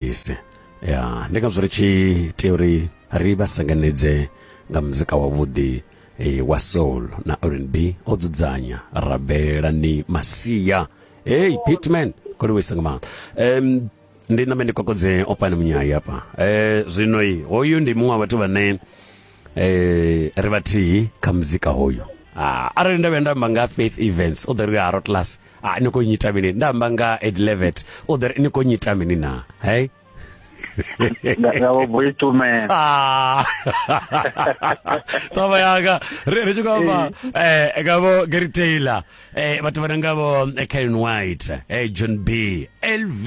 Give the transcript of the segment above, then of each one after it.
isi ya ndi ngazwo ri tshi tea uri ri vha sanganedze nga muzika wavhuḓi eh, wa soul na rnb o dzudzanya rabela ni masia hey pitman koliwisa nga maanḓa um, ndi name ndi kokodze opane munyai apa eh, zwino i hoyu ndi muṅwe wa vhathu vhane eh, ri vhathihi kha muzika hoyu ah, arali nda vhuya nda amba nga faith events o ḓo ri ha rotlas ah ni khou nyita mini nda amba nga edlevet o ḓo ri ni khou nyita mini na hey nga vho boitumela ah. taba yanga ri ri tshi khou amba eh, eh nga vho Gary Taylor eh vhathu vha nga vho eh, Karen White eh John B LV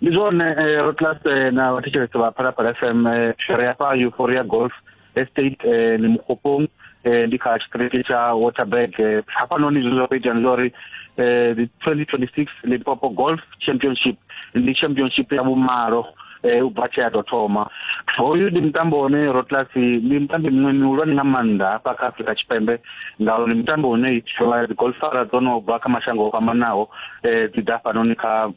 ndi zwone eh, ro class eh, na vhathetshelesi vha phalaphala fm eh, shere ya fha euphoria golf estate eh, ni mukgopong eh, ndi kha tshitiriti tsha waterberg eh, hafhanoni zwine zwa khou itea ndi zwa uri eh, the 2026 limpopo golf championship ndi championship ya vhumalo eh, u bva tshea tou thoma hoyu ndi mutambo une rotlasi ndi mutambi muṅwe mihulwane nga maanḓa hafha kha afrika tshipembe ngauri ndi mutambo une itiwa dzigolfara dzo no bva kha mashango o fhambanaho um eh, dzi ḓa fhanoni kha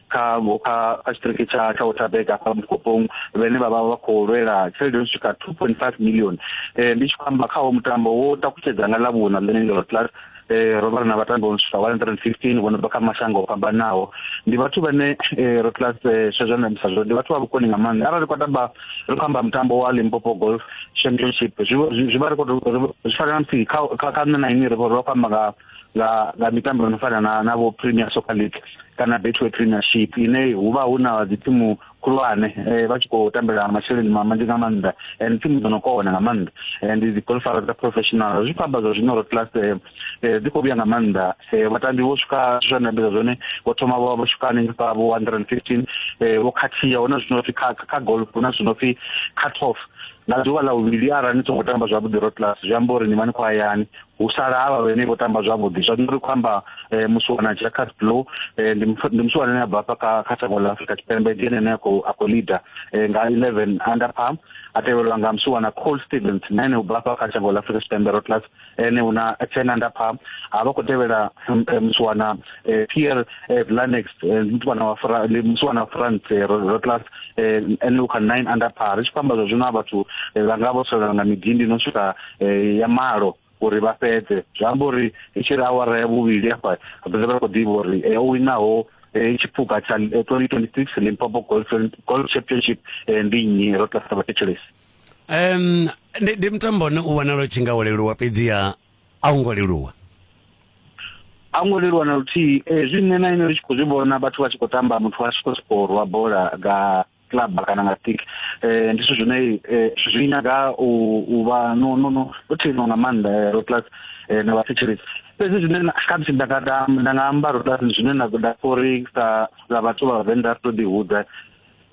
kha kha kha tshiṱiriki tsha tsha waterberg afha mukopong vhane vha vha vha khou lwela tshelede yo swika two point five million um ndi tshi khou amba khawo mutambo wo takutshedza nga ḽa vhuṋa ḽine ndi rotlasi eh, ro vhala na vhatambi vho no swika 115 vho no bva kha mashango o fhambanaho ndi vhathu vhane eh, ro class eh, swezwo na misa zwo ndi vhathu vha vhukoni nga maanḓa arali kwa tamba ri khou amba mutambo wa Limpopo Golf Championship zwi zwi- zwi vha ri khou tou- ri- zwi fana na musi kha kha kha nṋe na inwi ri vho ri vha khou amba nga nga nga mitambo ino fana na na vho Premier Soccer League kana Betway Premiership ine hu vha hu na dzithimu khulwane eh, vha tshi khou tambela masheleni manzhi nga maanḓa and thimu dzo no kona nga maanḓa and dzi golfara dza professional zwi khou amba zwa zwino ro class eh, eh, dzi khou vhuya nga maanḓa vhatambi vho swika zwa nambedza zwone vho thoma vho vho swika hanengei kha vho 115 vho khathiya huna zwino pfi kha kha golf huna zwino pfi cut off nga ḓuvha ḽa vhuvhili arali ni songo tamba zwavhuḓi ro class zwi amba uri ni vha ni khou hayani hu sala havha vhene vho tamba zwavhuḓi zwa ri khou amba eh, musiwana jacas blow eh, ndi musiwana ane a bva kha kha shango ḽa afrika tshipembe ndi ene ane a khou a khou leader eh, nga 11 under palm a tevhelwa nga musiwana col stevens na ene u bva fha kha shango ḽa afrika tshipembe rotlas ene u na ten under palm a vha khou tevhela musiwana pierre vlanex musiwana wa musiwana wa france rotlas ene u kha nine under par ri tshi khou amba zwa zwino a vhathu vha nga vho solela nga midindi no swika eh, ya malo uri vha fhedze zwi amba uri i tshi ri awara ya vhuvhili hafha vha vha khou ḓivha uri eh, o winaho eh, tshiphuga tsha 2026 eh, limpopo golf championship ndi nnyi ro tasa vhathetshelesi um ndi mutambo ne u vhonala u tshi nga wo leluwa fhedziha a u ngo leluwa a ngo leluwa na luthihi hezwi nṋe na ine ri tshi khou zwi vhona vhathu vha tshi khou tamba muthu a tshi khou sokou rwa bola nga club kana nga stick eh ndi zwithu zwine eh, zwi nyaga u u vha no no no no thino nga maanḓa eh, ro plus eh, na vhathetshelesi fhedzi zwine na- kha musi nda nga da- nda nga amba ro plus zwine na da uri sa sa vhathu vha vhavenḓa ri to ḓi hudza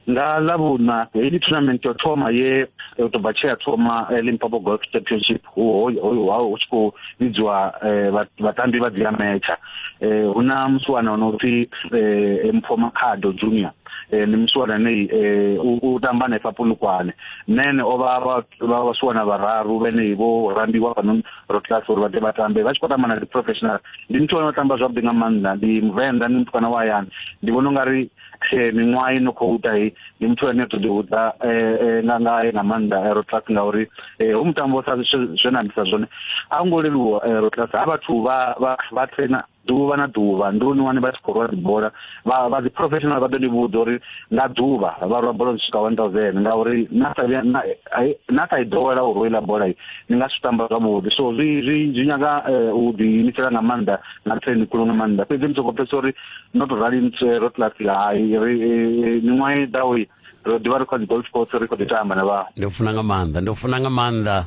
nga ḽavhuṋa heyi tournament yo thoma ye eh, u tou bva tshe ya thoma eh, limpopo golf championship hu ho- ho- ho- hu tshi khou vhidziwa eh, vha- vhatambi vha dzi ametsha Eh, hu na musi wana ono pfi eh, mpho makhado junior eh, ni musiwana nei eh, u, u tamba hanefha punukwane nene o vha vha- vha vhasiwana vhararu vhenei vho rambiwa fhanon rotlas uri vha ḓe vha tambe vha tshi khou tamba na dzi professional ndi muthu ano tamba zwavhuḓi nga maanḓa ndi muvenḓa ndi mutukana wa hayani ndi vhona u nga ri eh, miṅwaha i no khou ita hei ndi muthu ane to ḓihudza eh, eh, nga ngae nga maanḓa eh, rotlas ngauri eh, hu mutambo sa zwe zwe na ambisa zwone a hu ngo leluwa eh, rotlas ha vhathu vha vha vha traina ḓuvha na ḓuvha ndi luni wane vha tshi khou rwa dzibola vha vha dzi professional vha ḓo ni vhudza uri nga ḓuvha vha rwa bola dzi swika 1000 ngauri na sa vhuya na na sa i ḓowela u rwela bola ni nga si tamba zwavhuḓi so zwi zwi zwi nyaga eh, u ḓi imisela nga maanḓa na train khulu nga maanḓa fhedzi ni soko pfhesesa uri no to rali ni tswe ro class ya hai ri eh, miṅwaha i ḓaho ro ḓivha ri kha dzi golf course ri kho ḓi tamba na vha ndo funa nga maanḓa ndo funa nga maanḓa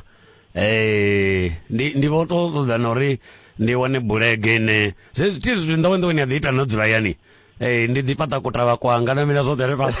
Ee, ndi ndi vho to ṱoḓa na uri ndi wane bulege ine zwe thi zwithu nḓowenḓoweni ya ḓi ita no dzula yani ee ndi ḓi fhaṱa kutavha kwanga na mila zwoṱhe ri fhaṱa